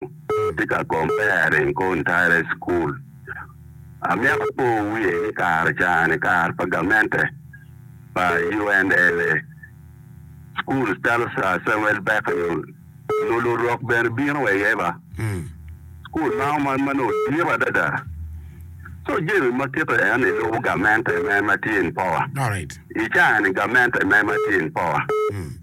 Atye ka comparing kong tara i cukul. Amyero apo wiye ni kare cani, kare pa gamente pa UNLA, cukul calo Sir Samuel Becknell nyo lurok bene bino wa iye ba. Cukul ma onongo ma nongo dit adada. So jami ma kite eno ni lubo gamente me ma tye in power. Alright. I cani gamente me ma tye in power.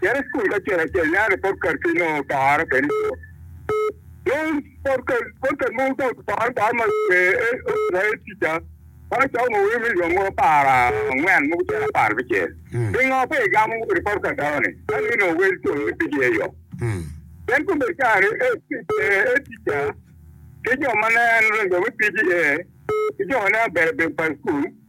Cit i cukul acel acel nia ni popcat ki nongo paro kene ico. Dong popcat mogo ka oparo par ma pe otimaye tica ma cako ngo weko milion mogo apar angwen mogo cen apar bicel. Pingo pe igamo kodi popcat dawa ni kadi ni nongo wel col ni pigi aye yok. Pien kome cari ee tica ki jo ma nen jo me pigi ee ki jo ma nen abedo bedo pa cukul.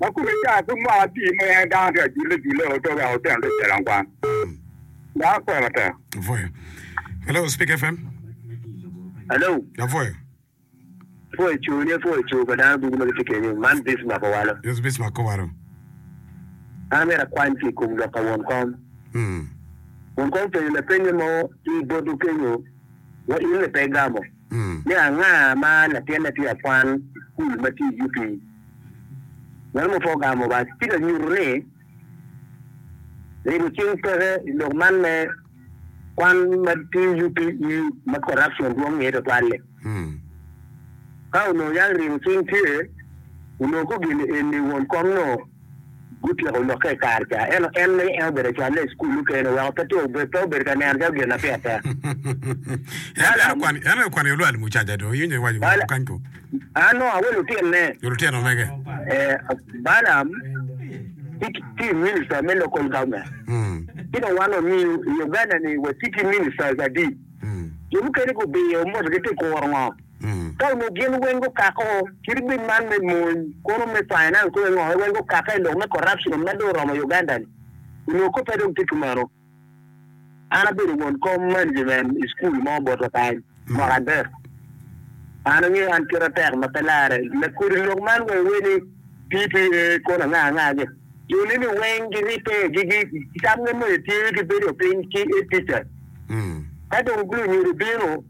Ma kome car pud mwaka apii mo en dano tye ka jule jule o to wek oteno lwet calo ankwang. Dano pwoyo matek. Apwoyo. Hello, Speak FM. Hello, Apwoyo. pwoyo co ni pwoyo co pa dano dugu ma gitye kenyo. Man Bismarck Owalo. Yes, Bismarck Kowalo. An amyero akwany ki i kom lok pa won kom. Mm. Won kom openyo lapenye mo ki bot okenyo wa in ni pe igamo. ni anga ma latinne tye ka kwan kul ma tye i yuti. Meno ma pe ogamo Obac tye ka nyutu ni ribo cing peke i lok man me kwan ma tye i yuti ma corruption dwong iye twatwal-li. Ka onongo yang ribo cing tye, onongo gugini eni won kom nongo Gutyeko lokke i kare ca, ento en ma en obedo acolne i cukul nukene oweko pe tye obe, pe obedo ka neno calo gin na pire tek. En en okwano en en okwano yo lwal mucaja dong iwinyo iwaco Bala- woko kany ko. An nongo awe lutinne. Yo lutino mege. Eh, Balaam tye ki- tye i minister me local government. Mm. Ci dong wan wamiyo i Uganda-ni watye ki ministers adi. Mm. Jo mukene gubiyo motogi tye kuro ngo. Ka onongo gin weng gukako kit bim man me mony, kono me finance kong engo en weng gukake ilok me corruption ma dong oromo Uganda ni? Onongo kobbe dong tye kumeno. An abedo won kom management i school mo botwa kany mwaka adek. An angeyo an kite tek ma pe larre. Lakodi lok man weng iwer ni PPA kono anga anga gi. Jo ni ni weng gi rite gi gi samge moyo tye gi bedo piny ki e teachers. Ka dong lunyodo bino.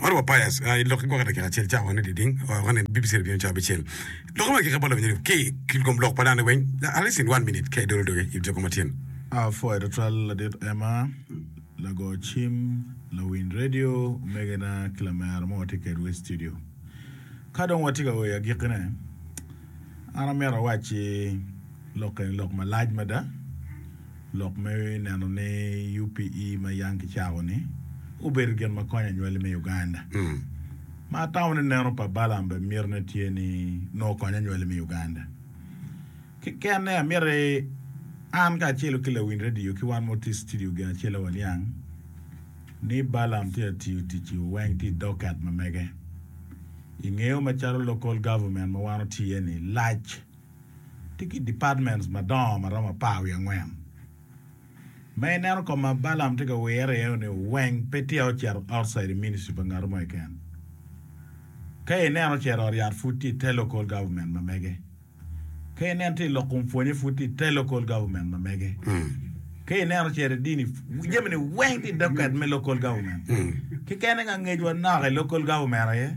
Maro wa bias a i lok ki gwok i dakika acel cawa ni diding wa wa ni BBC Review cawa bicel lok ma kika bolo nyeri ki ki kom lok pa dano weng at least in one minute ka i dolo doge in joko ma tyen A pwoya twatwal ladit Emma, lago cim, lawiny redio, omegena ki lamera ma watye kedwa i studio. Ka dong watye ka oyo agikkine, an amito awacci lok eni lok malac mada. Lok me neno ni UPE ma yam kicako ni obedo gin ma konyo anywali me Uganda. Ma atamo ni neno pa Balaam bene mito ne tye ni nongo konyo anywali me Uganda. Kekene amyero an kacelo ki lawiny radio ki wan ma watye i citidio gin acel aye waniang ni Balaam tye ka tiyo tic i oweng tye i docket ma mege. Ingeyo macalo local government ma wan watye iye ni lac. Tye ki departments madongo ma romo apar wiye angwen. Ma ineno kong ma Balaam tye ka wirre iye ni weng pe tye ocito outside the ministry pa ngat mo keken. Ka ineno ocito ot yat pud tye ite local government ma mege. Ka ineno tye ilok kom pwonye pud tye ite local government ma mege. Ka ineno ocito idini jami ni weng tye idocket me local government. Keken eng angecwa nok i local government aye.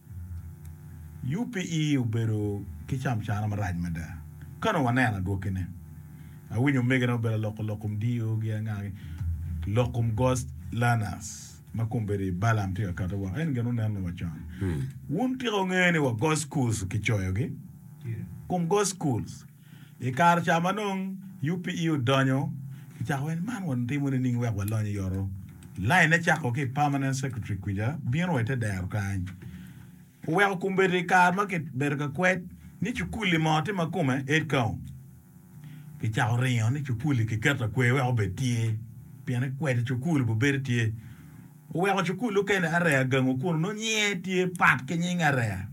UPE obedo ki camcana marac mada. Ka nongo waneno adwokine, awinyo omegina obedo ka loko lok kom DO gi anga ki lok kom Ghost Learners ma kombeddi Balaam tye ka kati woko. En gin wunen me wa con. Wun tika wungeyo ni wa Ghost Schools kicoyogi? Kom Ghost Schools. I kare ca ma nongo UPE odonyo ki cako weny man watimo nining wek walony i oto? Lainne cako ki i Permanent Secretary kwica bino wa i te dero kany. Oweko kombeddi i kare ma kibedo ka kwed ni cukuli mo tye ma kome Edcom. Kicako ringo ni cukuli kiketo akwer wek obed tye pien ikwed i cukul obedo tye. Oweko cukul lukele Area Gangu kun onongo nyinge tye pat ki nying Area.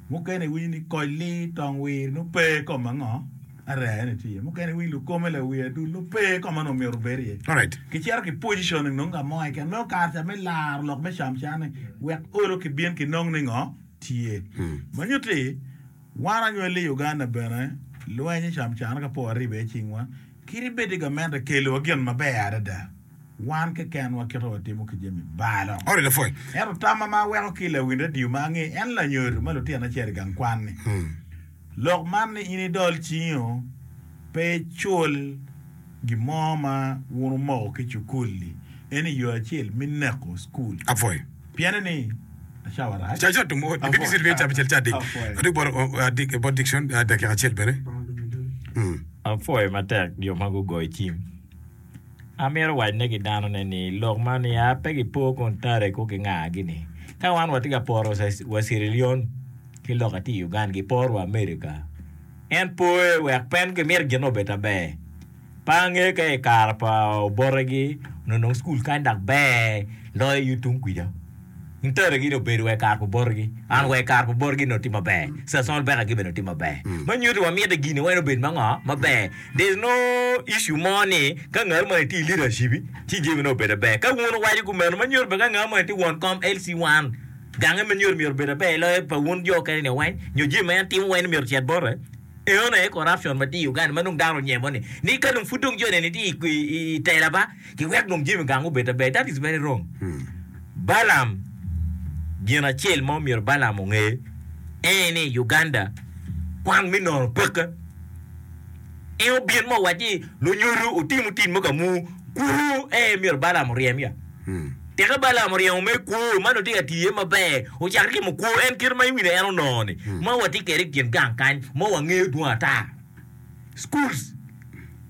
Mukene iwinyo ni Kojli, Tongwiri nongo pe i kom ango, Area ene tye iye. Mukene iwinyo Lukome, Lawi Adul nongo pe i kom ango myero obed iye. Kicito ki positioning nongo ka mo keken. Nongo kare ca me laro lok me camcane wek olo kibin kinong ni ngo tye. Ma nyuto ni wan anywalli i Uganda bene lweny camcane ka po waribe iye cingwa, kit ibed i gamente kelowa gin maber adada. Wan keken wakito watimo ki jami balo. Ento tamma ma aweko ki i lawin radio ma ange en lanyodo ma lutino acel i gang kwan ni, Lok man ni in idol cingi-o, pe icul gin mo ma wun wumoko ki i cukul-li. Eni yo acel me neko cukul. Piene ni, Cawa rac. Apwoyo matek jo ma gugoyo cim. Amito wacne ki danone ni lok ma nia pe gipo kun tare ko gingagi ni ka wan watye ka poro wa Sierra Leone ki loka tye i Uganda giporo wa America en poye wek pen gimito gin obed aber pe ange ka i kare pa obotegi ononong school kany dok ber loyo tung kuca. Nteregi dong bedo wek kar pa botgi an wek kar pa botgi nongo tye maber, Cecil Becker gibene tye maber. Ma nyuto ni wamyete gin weng obed ma ngo? Maber. There is no issue mo ni ka ngat moni tye i leadership ci jami nongo obedo aber. Ka wun wuwaco kumeno ma nyuto bene ka ngat moni tye won kom LC one gange ma nyuto myero obed aber loyo pa wun jo okene ni weng nyo jami ma en timo weng ni myero ocit bote. Eno aye corruption ma tye i Uganda ma dong dano onyemo ni ni ka dong pud dong joni ni tye i tela ba. ki wek dong jami gang obed aber that is very wrong Balaam gin acel ma omyero Balaam onge eye ni Uganda kwan me nono peke en obin ma owac ni lunyodo otimo tit mo ka mu kwo eye myero Balaam oryem ya teke Balaam oryemo me kwo ma nongo tye ka tiye maber ocako timo kwo en kite ma iwine en onongo ni ma watye kwede i kin gang kany ma wangeyo dwong ata schools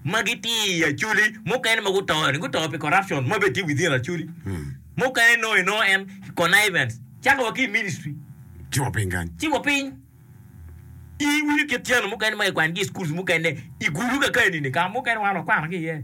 ma gitye i Acholi mukene ma guto ni guto pi corruption ma bene tye within Acholi. Mukene nongo inongo en connivance. Cako wa ki i ministry Ci wa piny kany. ci wa piny. I wili kit tyeno mukene ma kikwanigi i schools mukene i gulu kakeni-ni ka mukene wan wakwanogi iye.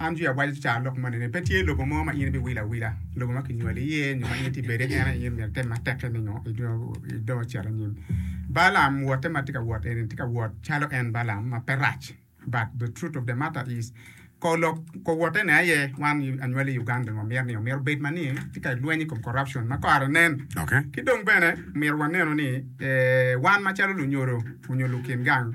An Jwi awaco cawa lok moni ni, pe tye lobo mo ma in ibiwilo awila, lobo ma kinywali iye nyo ma in itye ka bedi iye, en aye myero item matek-ki ni nongo idong icit anyim. Balaam wotte ma tye ka wot eni-ni tye ka wot calo en Balaam ma pe rac but the truth of the matter is kor lok kor wottene aye wan anywali i Ugandani wamyero ni omyero obed ma ni tye ka lweny i kom corruption ma kare nen. Ki dong bene omyero wanenu ni wan macalo lunyodo onyo lukin gang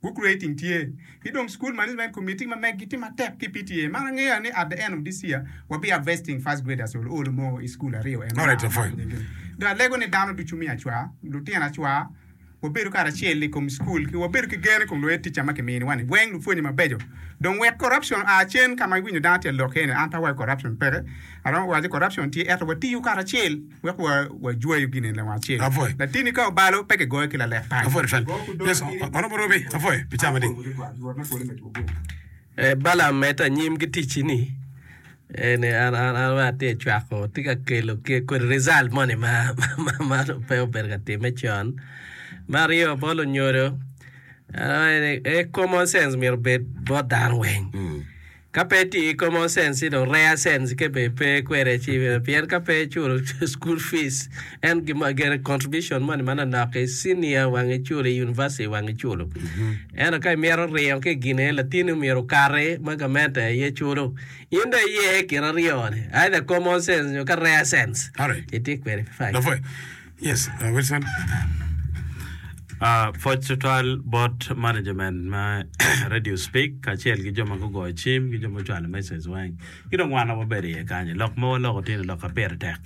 Book rating tye ki dong school management committee ma meg gi tye matek ki PTA man angeya ni at the end of this year wa bi harvesting first graders ol ol mo i school aryo eno ma amako nying gi dong alego ni dano ducu me acwa lutino acwa wa bedo karacel i kom school ki wa bedo ki gen i kom lued ticca ma ki mini wa ni weng lupwonye ma beco dong wek corruption a cen ka ma iwinyo dano tye ka lok iye ni an pe awaco corruption peke aromo waco ni corruption tye ento wa tiyo karacel wek wajweyo gine leng acel. Latini ka obalo, pe kigoyo ki lalek pal. Balam medo anyim ki ticci ni, En atye ka cwako, atye ka kelo kodi rizalt moni ma pe obedo ka timme con. Me aryo, bot onyodo, Common sense myero obed bot dano weng. Ka pe iti i common sense ci dong rare sense ke be pe kwede ci bene pien ka pe iculo school fees en gin ma gene contribution money manonok i senior wang iculo i university wang iculo ento ka imito ringo ki i gine latini omyero okati ma gamente aye culo in dong iye i kin aryo ni either common sense nyo ka rare sense Alright. iti kwede. Fine. Lapwony, Yes, uh, Wilson. Uh, pwoc tutwal bot management ma radio speak kacel ki jo ma gugoyo cim ki jo ma ocwalo message weng ki dong wan wabedo iye kany lok ma waloko tino lok ka pire tek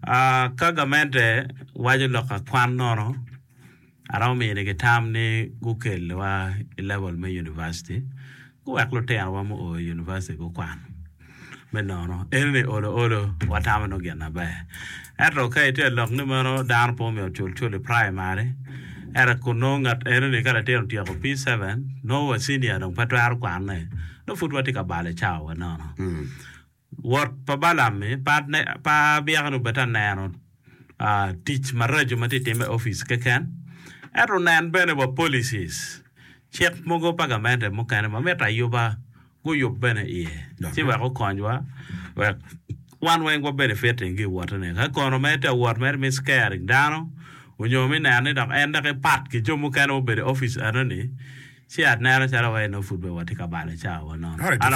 uh, ka gamente waco lok akwan nono Aromo minigi tam ni gukelwa i level me University guwek lutinowa mu oo i University gukwan me nono. Enini olo olo watamo nongo gin maber. Ento ka itye ka lok ni meno dano pe omyero ocul cul i primary ento kun nongo ngat enini ka latin otyeko P7 nongo wa senior dong pe twero kwane nongo pud watye ka balo cawa wa nono. Wot pa Balaam-mi pa abyeka-ni obed-de aneno tic maraco ma tye ka timme i opic keken, ento onen bene wa policies, cik mogo pa gamente mukene ma mitte ayuba guyub bene iye, ci wek okonywa wek wan weng wa benefit i giwotene. Ka kono mere tye wot mere me scaring dano onyo me neno ni dok en dok epat ki jo mukene ma obedo i opic enoni, ci aneno calo wa enoni pud bene watye ka balo cawa wa nono.